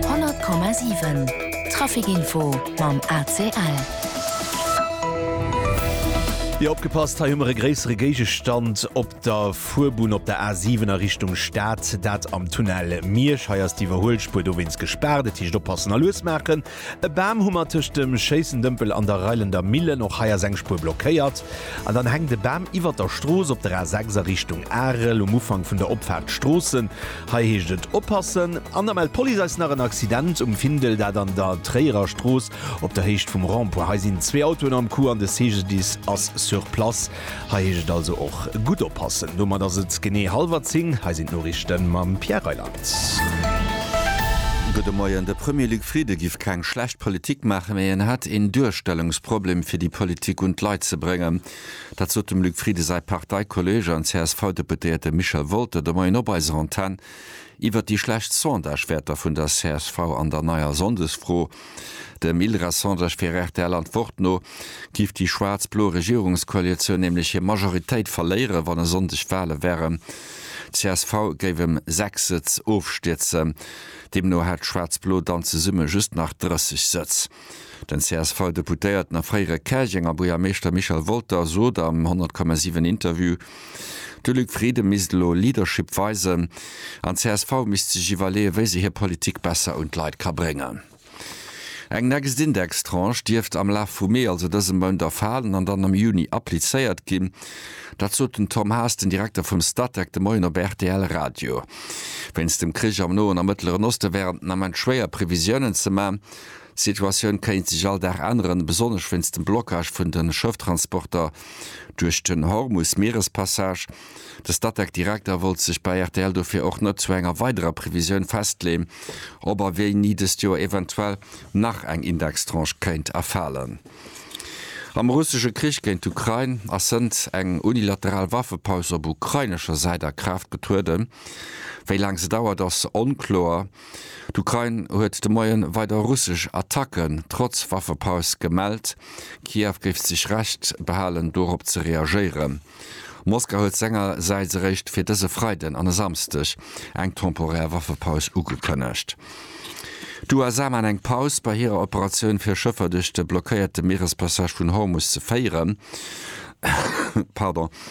100,7 Traficinfo mam ACL. Jo opgepasst, hei hu mer e gréissere Géigestand op der Fuerbunn op der A7 a Richtung Stad, dat am Tunnel Miersch. Hei ass d'Iwwerhuelspuer dowéinst gespaart, dat heescht oppassen a lues maachen. E Bam hu mer tëscht dem Schéissendëmpel an der Reilender Millen. Och hei ass eng Spuer blockéiert. An dann hänkt e Bam iwwert der Strooss op der A6 a Richtung Arel um Ufank vun der Opfaart Stroossen. Hei heescht et oppassen. An da mellt d'Police eis nach en Accident um Findel, dat an der Tréierer Strooss op der Héicht vum Rond-point. Hei sinn zwee Autoen am Coup an de CGDIS ass sur place. Hei heescht et also och gutt oppassen. Domat ass et genee hallwer 10, hei sinn d'Noriichte mam Pierre Reyland. Gudde Moien. De Premier Luc Frieden giff keng schlecht Politik maachen, mee en hätt een Duerstellungsproblem fir déi Politik un d'Leit ze bréngen. Dat sot dem Luc Frieden säi Parteikolleeg an CSV-Deputéierte Michel Wolter de Moien op eiser Antenn iwwert déi schlecht Sondagewäerter vun der csv an der neier Sonndesfro. Dem Ildra Sondage fir rtl Antwort no, giff déi schwaarz-blo Regierungskoalitioun nämlech hir Majoritéit verléieren, wann e Sonndeg Wale wären. Csv géif ëm 6 Sëtz ofstierzen. Deemno hätt schwaarz-blo dann zesumme just nach 30 Sëtz. Den CSV-Deputéierten a fréiere Käerjenger Buergermeeschter Michel Wolter sot am 100,7 Interview, De Luc Frieden misst elo Leadership weisen an csv misst sech iwwerleeën, wéi se hir Politik besser un d'Leit ka bréngen. Eng Nextindex-Tranche dierft am Laf vum Mee, also dësem Mount, erfalen an dann am Juni applizéiert ginn. Dat sot den Tom Haas, den Direkter vum Statec, de Moien op rtl Radio. Wéinst dem Krich am Noen a Mëttleren Oste wären den Ament schwéier Previsiounen ze man. D'Situatioun kéint sech all Dag änneren, besonnesch wéinst dem Blockage vun de Schëfftransporter duerch den Hormus-Mierespassage. De Statec-Direkter wollt sech bei rtl dofir och net zu enger weiderer Previsioun festleeën, ob a wéini dëst Joer eventuell nach eng Indextranche kéint erfalen. Am russesche Krich géint d'Ukrain ass sënnt eng unilateral Waffepaus op ukrainescher Säit a Kraaft getrueden. Wéi laang se dauert, ass onkloer. D'Ukrain huet de Moie weider russesch Attacken trotz Waffepaus gemellt. Kiew géif sech Recht behalen, dorop ze reagéieren. Moskau huet sengersäits eréischt fir dëse Freiden an e Samsdeg eng temporär Waffepaus ugekënnegt. D'USA maan eng Paus bei hirer Operatioun fir Schëffer duerch de blockéierte Mierespassage vun Hormus ze féieren.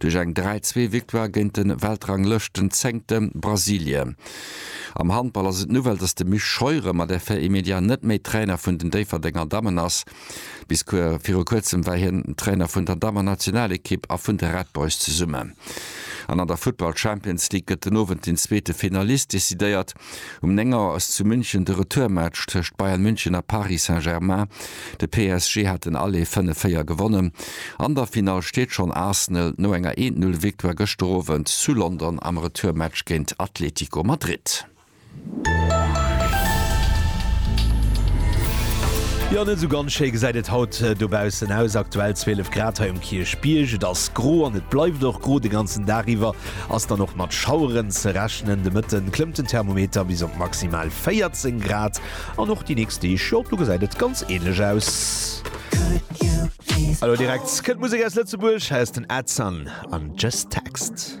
duerch eng 3 zwee Victoire géint de Weltranglëschten Zéngte Brasilien. Am Handball ass et d'Nouvelle, datt de Misch Scheuren mat Effet immédiat net méi Trainer vun den Déifferdenger Dammen ass. Bis viru kuerzem war hien Trainer vun der Dammennationalekipp a vun de Red Boys zesummen. An an der Futtball Champions League gëtt den Owend den zweete Finalist decidéiert. Um 9 Auer ass zu München de Retourmatch tëscht Bayern München a Paris Saint-Germain. De PSG hat den Aller 5-4 gewonnen. An der Finall steet schonn Arsenal no enger 1 Null Victoire gëschter Owend zu London am Retourmatch géint Atletico Madrid. Jo, net esou ganz schéi gesäit et haut dobaussen aus. Aktuell 12 Grad hei um Kierchbierg. Et ass gro an et bleift och gro de ganzen Dag iwwer. Ass dann och mat Schaueren ze rechnen. De Mëtte klëmmt den Thermometer bis op maximal 14 Grad an och déi nächst Deeg, jo, do gesäit et ganz änlech aus. Elo direkt kënnt Musek aus Lëtzebuerg, hei ass den Edson an Just Text.